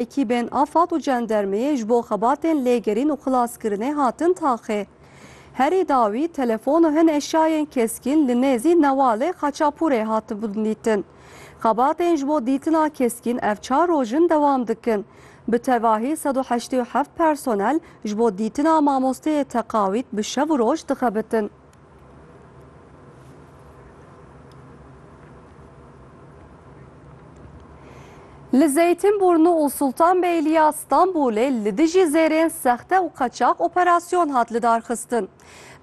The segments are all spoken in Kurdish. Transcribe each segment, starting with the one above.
Ekîbên afad û cendermeyê ji bo xebatên lêgerîn û xilaskirinê hatin taxê. Herî dawî telefon û hin eşyayên keskîn li nêzî Newalê Xaçapûrê hatibûn dîtin. Xebatên ji bo dîtina keskîn ev çar roj in dewam dikin. Bi tevahî sed û heştê û heft personel ji bo dîtina mamosteyê teqawît bi şev û roj dixebitin. Li Zeytinburnu û Sultanbeyliya Stenbolê li dijî zêrên sexte û qeçax operasyon hat lidarxistin.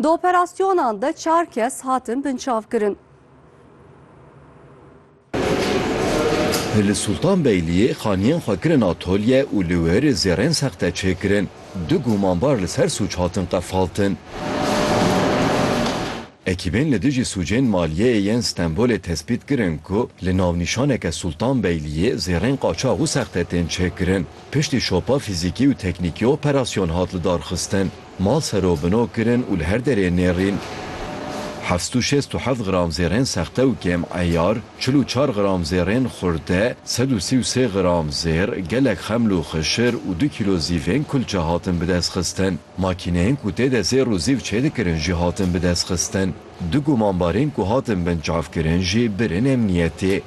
Di operasyonan de çar kes hatin binçavkirin. Li Sultanbeyliyê xaniyên xwe kirin atolye û li wir zêrên sexte çêkirin. Du gumanbar li ser sûc hatin qefaltin. Ekîbên li dijî sûcên maliyeyê yên Stenbolê tespît kirin ku li navnîşaneke Sultanbeyliyê zêrên qaçax û sexte tên çêkirin. Piştî şopa fîzîkî û teknîkî operasyon hat lidarxistin. Mal sero bino kirin û li her derê nêrîn. Heft sed û şêst û heft gram zêrên sexte û kêm eyar, çil û çar gram zêrên xurde, sed û sî û sê gram zêr, gelek xeml û xişir û du kîlo zîvên kulçe hatin bidestxistin. Makîneyên ku tê de zêr û zîv çêdikirin jî hatin bidestxistin. Du gumanbarên ku hatin binçavkirin jî birin emniyetê.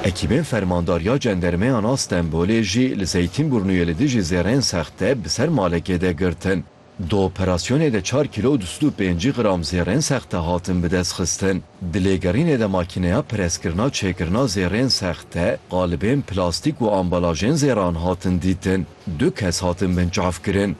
Ekîbên Fermandariya Cendermeyana Stenbolê jî li Zeytînbûrnûyê li dijî zêreyên sexte bi ser malekê de girtin. Di operasyonê de çar kîlo û du sed û pêncî gram zêreyên sexte hatin bi dest xistin. Di lêgerînê de makîneya preskirina çêkirina zêreyên sexte, qalibên plastîk û ambalajên zêran hatin dîtin. Du kes hatin binçavkirin.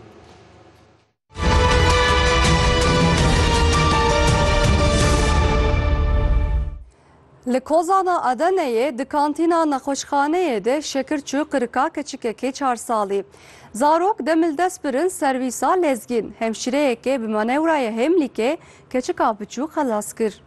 Li Kozana Adeneyê di kantîna nexweşxaneyê de şekir çû qirika keçikekê çar salî. Zarok demil dest birin servîsa lezgîn. Hemşîreyekê bi manewraya hêmlîkê keçika biçû xelas kir.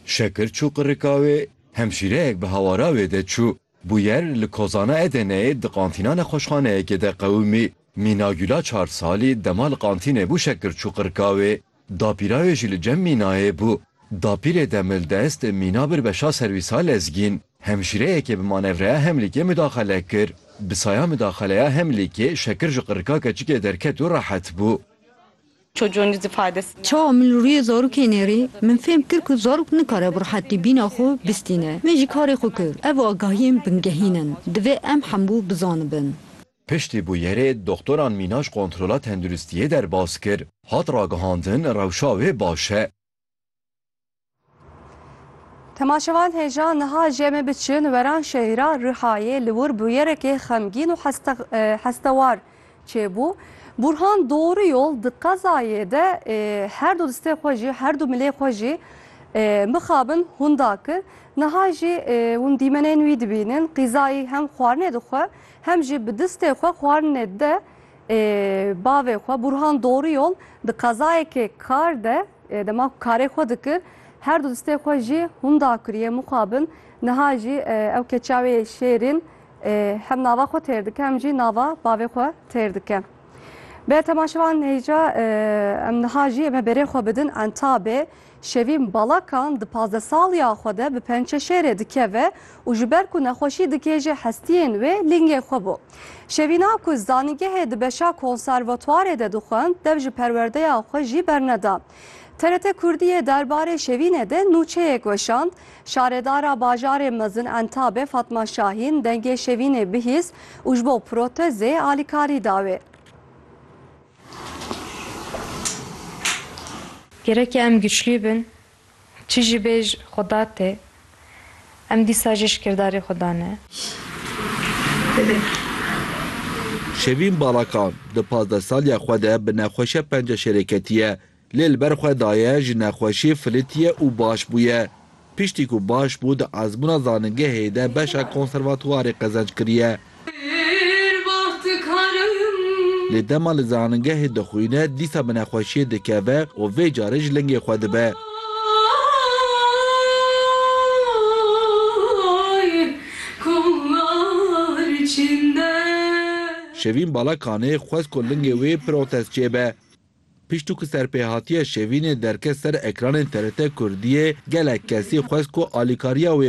Şekir çû qirika wê, hemşîreyek bi hawara wê de çû. Bûyer li kozana Edeneyê di qantîna nexweşxaneyekê de qewimî. Mîna Gula çar salî dema li qantînê bû şekir çû qirkawê. Dapîra wê jî li cem Mînayê bû. Dapîrê demildest Mîna bir beşa serwîsa lezgîn. Hemşîreyekê bi manevreya Hemlîkê midaxele kir. Bi saya midaxeleya Hemlîkê şekir ji qirika keçikê derket û rehet bû. Çawa min li rûyê zarokê nêrî, min fêm kir ku zarok nikare bi rihetî bîna xwe bistîne. Min jî karê xwe kir. Ev agahiyên bingehîn in. Divê em hemû bizanibin. Piştî bûyerê doxtoran mîna ji kontrola tenduristiyê derbas kir. Hat ragihandin rewşa wê baş e. Temaşevan hêja niha jê me biçin weran şehîra Rihayê li wir bûyerekê xemgîn û hestewar çêbû. Burhan doğru yol di qezayê de her du distê xwe jî her du milê xwe jî mixabin hûn dakir. Niha jî hûn dîmenên wî dibînin qîzayî hem xwarinê dixwe hem jî bi distê xwe xwarinê de Bavê xwe Burhan Doruyol di qezayekê kar de dema ku karê xwe dikir her du distê xwe jî hûn dakiriye mixabin niha jî ew keça wê şêrîn hem nava xwe têr dike hem jî nava bavê xwe têr dike. Be temaşevan hêja em niha jî em berê xwe bidin entabê. Şevîn Balakan di pazdesaliya xwe de bi pençeşêrê dikeve û ji ber ku nexweşî dikê ji hestiyên wê lingê xwe bû. Şevîna ku zanîngehê di beşa konservatuarê de dixwend dev ji perwerdeya xwe jî berneda. TRT Kurdiyê derbarê Şevînê de nûçeyek weşand, Şaredara bajarê mezin Entabê Fatma Şahîn dengê Şevînê bihîst û ji bo protezê alîkarî da wê. Gereke em güçlî bin, çi jî bêj xuda tê, em dîsa jî ji kirdarî xuda ne. Şevîn Balakan di pazdeh saliya xwe de bi nexweşe penceşêreketî ye. Lê li ber xwe daye ji nexweşî filîtiye û baş bûye. Piştî ku baş bû di ezmûna zanîngehê de beşa konservatuwarê qezenc kiriye. Lê dema li zanîngehê dixwîne dîsa bi nexweşiyê dikeve û vê carê ji lingê xwe dibe. Şevîn Balakanê xwest ku lingê wê protez çêbe. Pişt û ku serpêhatiya Şevînê derket ser ekranên TRT Kurdiyê, gelek kesî xwest ku alîkariya wê